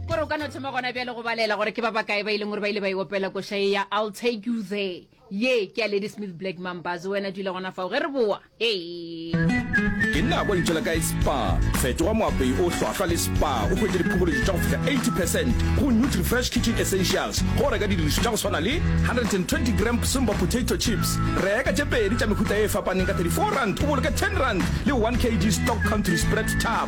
kore o ka no thoma gona bjale go balela gore ke ba bakae ba e leng gore ba ile ba e opela košae ya i'll take you there ye ke ya lady smith black mambas wena dula gona fao ge re boa ee ke nna kwa ntšhela kae spa fetoga moapei o hlwahlwa le spa o hwetše diphokoledi tša go fihla 80 percent go nutrifresh kitchen essentials go reka didirišo tša go swana le 120 gram simba potato chips reka tše pedi tša mehuta e fapaneng ka 34 rand o boloke 10 rand le 1 kg stock country spread tap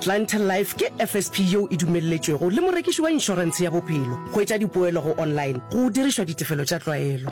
Clientele Life ke FSP yeo e dumelletšwego le morekiši wa inšorentshe ya bophelo go etša dipoelo go online go dirišwa ditefelo tša tlwaelo.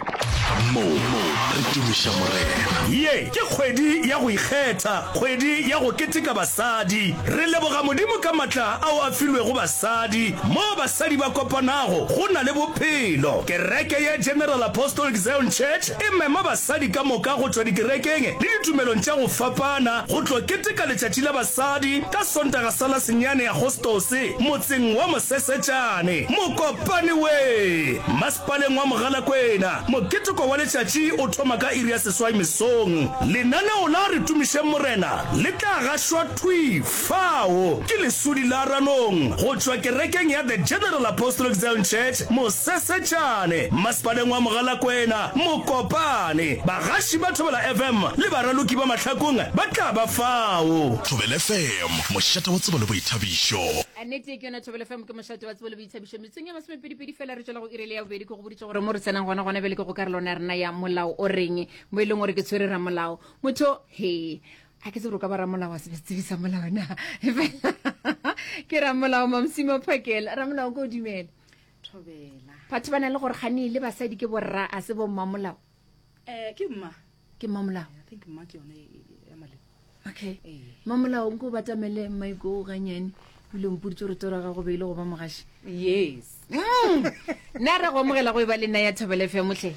Moo re tumiša Morena. Ye ke kgwedi ya go ikgetha, kgwedi ya go keteka basadi. Re leboga Modimo ka matla ao a filwego basadi. Moo basadi ba kopanago, go na le bophelo. Kereke ye General Apostolic Zion Church e mema basadi ka moka go tšwa dikerekeng le ditumelong tša go fapana. go tlo keteka letšatši la basadi ka Sontaga sa la senyane Agostose motseng wa Mosesetšane, Mokopane we. Masepaleng wa Mogalakwena, moketeko wa letšatši o thoma ka iri ya seswai mesong. Lenaneo la Re Tumišeng Morena le tla gašwa thwi fao ke leswuli la Ranong go tšwa kerekeng ya The General Apostolic Zion Church Mosesetšane, Masepaleng wa Mogalakwena. Mokopane, bagaši ba Thobela FM le baraloki ba mahlakong ba tla ba fao. Thobela FM, mošate wa tsebo le boithabišo. Nnete ke yona, Thobela FM ke mošate wa tsebo le boithabišo. Metsong ya masomepedipedi fela re tšwela go irele ya bobedi. Ke go boditše gore mo re tsenang gona gona bjale ke go karolwana ya rena ya molao o reng mo e leng gore ke tshwere ramolao motho he a ke tsebore o ka ba ramolao wa sebetsebisa molao na fela ke ramolao mamsimo phakela ramolao ko o dumele Thobela. Batho ba na le gore gane le basadi ke borra a se bo mmamolao. Eh ke mma. Ke mmamolao. I think mma ke yone ya male. Okay. Eh. Mmamolao nko batamele mmaiko o ganyane bile mputse gore tsora ga go beile go ba mogashi. Yes. Mm. Na re go amogela go e ba le nna ya Thobela FM tle.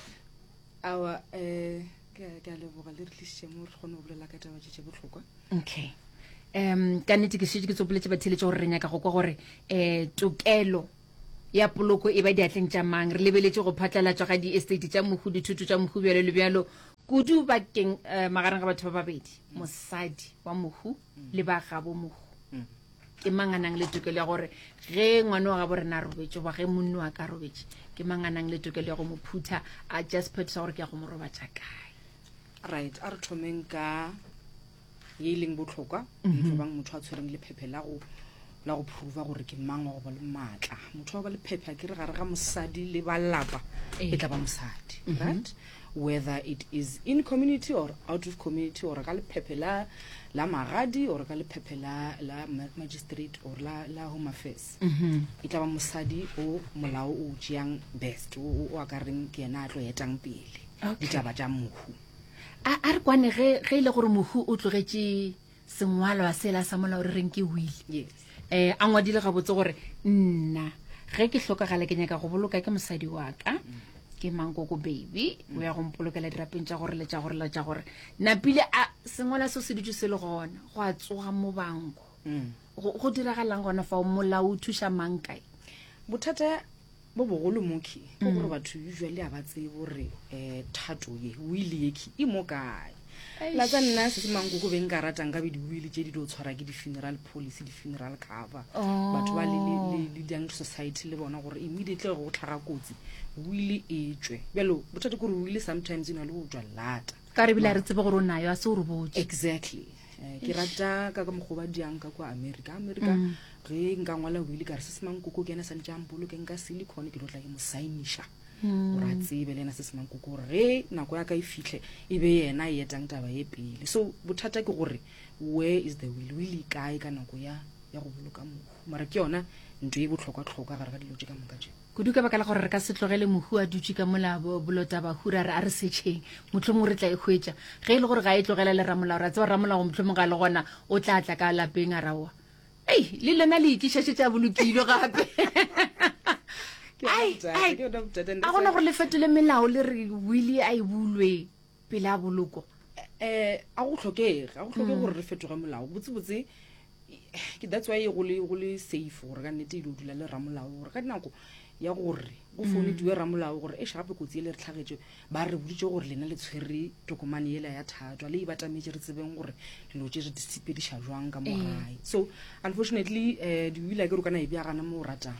Awa eh ke ke a leboga le re tlisitse mo re kgone go bolela ka taba tše botlhokwa. Okay. um ka nnete ke šetse ke tsopoletse batheletše gore re nyaka go kwa gore um tokelo ya poloko e ba diatleng tša mang? Re lebeletše go phatlalatšwa ga diestate tša mohu, dithoto tša mohu, bjalo le bjalo, kudu bakeng eh, magareng ga batho ba babedi, mosadi wa mohu le ba gabo mohu. Ke mang a nang le tokelo ya gore ge ngwana wa gabo rena a robetše, goba ge monno wa ka a robetše, ke mang a nang le tokelo ya go mo phutha a just phethisa gore ke ya go mo robatša kae? right a re thomeng ka ye e leng botlhokwa e tlo bang motho a tshwereng lephephe la go la go prova gore ke mang wa go ba le maatla motho wa ba lephephe a ke re gare ga mosadi le ba lapa e tla ba mosadi right whether it is in community or out of community or ka lephephe la la magadi or ka lephephe la la ma- magistrate or la la home affairs e tla ba mosadi o molao o tšeang best o o- o akareng ke yena a tlo etang pele Okay. ditaba tša mohu a a re kwane ge ge e le gore mohu o tlogetše sengwalwa sela sa molao re reng ke wile yes um a ngwadile gabotse gore nna ge ke hlokagale ke nyaka go boloka ke mosadi wa ka ke mankoko baby o ya go mpolokela dirapeng tša gore le tša gore le tša gore napile a sengwala seo se dutse se le gona go a tsoga mobanko Mm. go go diragalang gona fao molao o thuša mang kae bothata Mo bogolo moki ke gore mm. batho usually a ba tseye gore um eh, thato ye wile yeki e mo kae la tsa nna se se manko go beng ka ratang ka be diwile tse di dio tshwara ke di-funeral policy di-funeral cover oh. batho ba le young society le bona gore immediately go tlhaga kotsi wile e tswe bjalo bothate kore wile sometimes e na le go tswa lata ka re bile a re tsebe gore o nayo a se o re botse exactly eh, ke rata ka ka mokgoba diang ka kwa america america mm. ge nka ngwala wile ka re se semankoko ke ena sa ntse ang boloke nka silicon ke dotla ke mo sainiša mm. gore a tsebe le ena se semankoko gore ge nako ya ka e fitlhe e be yena e etang taba ye pele so bothata ke gore where is the will will e kae ka nako ya ya go boloka mohu mara ke yona nto e botlhokwa-tlhokwa gare ga dilo tse ka moka tse Kudu ka baka la gore re ka se tlogele Mohu a dutše ka mola bo- bolotaba hura re a re setšheng. Mohlomong re tla e hwetša. Ge e le gore ga e tlogela le ramolao, ra tseba ramolao mohlomong ga le gona, o tla tla ka lapeng a ra oa. Ei, le lena le itliša tše tša bolokilo gape. Ke yona Ai, bothata, ai, ke yona bothata, and a that's gona why- gore le fetole melao le re wili a e bulwe. pele a boloko um a go tlhokege a go tlhoke gore re fetoge molao botsebotse ke that's why go le go le safe gore ka nnete e ile o dula le ramolao gore ka dinako ya gore go founediwe ramolao gore e gape kotsi e le re tlhagetse ba re boditse gore lena le tshwere tokomane ela ya thatwa le e batametse re tsebeng gore dilo tse re di sepediša jwang ka mo gae so unfortunately um diwila ke ro kana e bjagana mo o ratang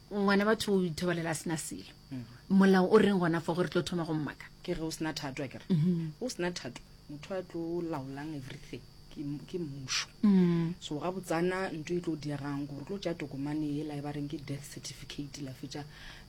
ngwana batho o ithobalela a sena selo molao o reng gona fo gore tlo thoma go mmaka ke ge o sena thato a kere mhm. o sena thato motho a tlo laolang everything ke mmušo mm. so ga botsana nto e tlo diegang gore tlo tša tokomane ela e ba reng ke death certificate la fetša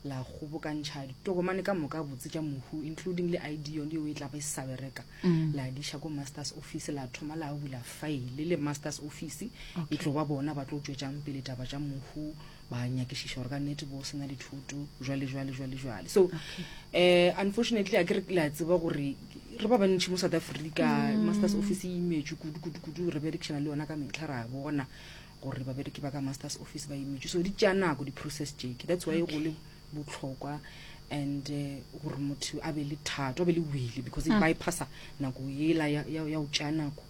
la kgobokantšha ditokomane ka moka botse tša mohu including le id yone yeo e tlago e sa bereka mm. la diša ko masters office la thoma la bula file le masters office e tlo ba bona ba tlo tšwetšang pele taba tša mohu ba nyakišiša gore ka nnete bo sena dithuto jwale jwale jwale jwale so um unfortunately a ke re la tseba gore re ba bantšhi mo south africa mm. masters office e imetšwe kudu kudu kudu re berekešana le yona ka metlha ra bona gore babereki ba ka masters office ba imetšwe so di tša nako di-process jeke that's why go le botlhokwa and eh, gore motho a be le thato a be le wele because e mm. bypassa nako ela ya go tša nako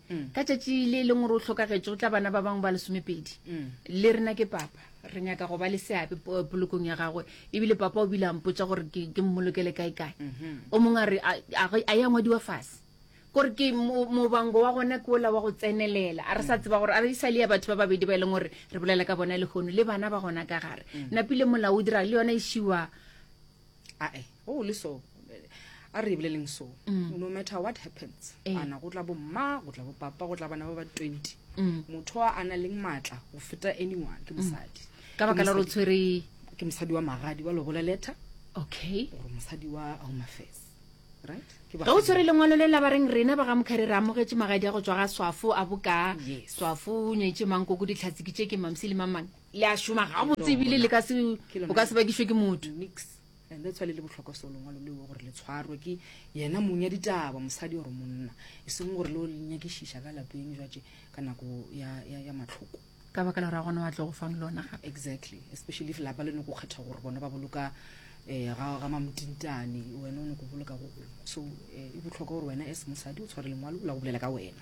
ka tšatši le leng gore o hlokagetše go tla bana ba bangwe ba lesomepedi le rena ke papa re nyaka go ba le seabe polokong ya gagwe ebile papa o bile a mpotsa gore ke mmolokele kae kae o mongwe a re a ya ngwadiwa fase gore ke mobango wa gona ke ola wa go tsenelela a re sa tseba gore a re e sa le ya batho ba babedi ba e leng gore re bolela ka bona lehono le bana ba gona ka gare napile molaodi ra le yona e šiwa ae go go le so a re boleleng so mm. no matter what happens eh. ana go tla bo mma go tla bo papa go tla bana ba ba 20 mm. motho a na leng maatla go feta anyone ke mm. mosadi ka baka la tshwere ke mosadi wa magadi wa lobola letter okay gore mosadi wa home affairs ga o tshwere lengwalo le la ba reng rena ba ga mokgare re amogetse magadi a go tswa ga swafo a boka swafo o nyetse mang koko ditlhatsiki tse ke mamsi le mamang Le a šoma gabotse ebile le ka se, o ka se bakišwe ke motho. Nix. And that's why le le bohlokwa so lengwalo leo gore le tshwarwe ke yena mong ya ditaba, mosadi or monna, e seng gore lo le nyakišiša ka lapeng jwatše ka nako ya, ya, ya matlhoko. Ka baka la gore a gona wa tlo go fang lona gape. Exactly. Especially if lapa le no go kgetha gore bona ba boloka eh, ga, ga mamotintane, wena o no go boloka go gongwe. So eh, e bohlokwa gore wena as mosadi o tshware lengwalo la go bolela ka wena.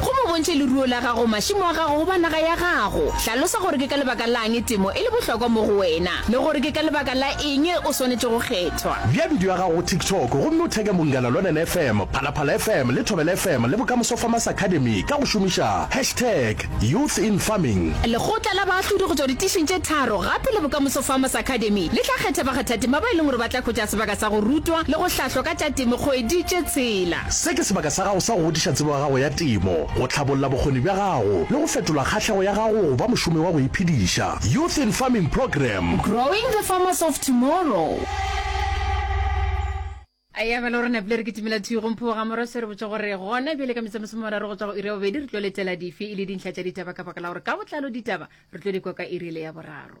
Gomme o bontšhe leruo la gago, mašimo a gago goba naga ya gago. Hlalosa gore ke ka lebaka la'ng temo e le bohlokwa mo go wena le gore ke ka lebaka la eng o swanetše go kgethwa. Bea bidio ya gago go TikTok gomme o theke Mungana Lonene FM, Phalaphala FM le Thobela FM le Bokamoso Farmers Academy ka go šomiša hashtag Youth in Farming. Lekgotla la baahlodi go tšwa ditišing tše tharo gape le Bokamoso Farmers Academy le tla kgetha bakgathatema ba e leng gore ba tla hwetša sebaka sa go rutwa le go hlahlwa ka a tša temo kgwedi tše tshela. Se ke sebaka sa gago sa go godiša tsebo ya gago ya temo, go tlhabolla bokgoni bja gago le go fetola kgahlego ya gago go ba mošomi wa go iphediša. Youth in Farming Program. Growing the farmers of tomorrow. Eya bjalo re napile re kitimela thwi go Mpho ga Moroshe re botša gore gona bjale ka metsamosome mararo go tšwa go iri ya bobedi re tlo letela dife e le dintlha tša ditaba ka baka la gore ka botlalo ditaba re tlo di kwa ka iri le ya boraro.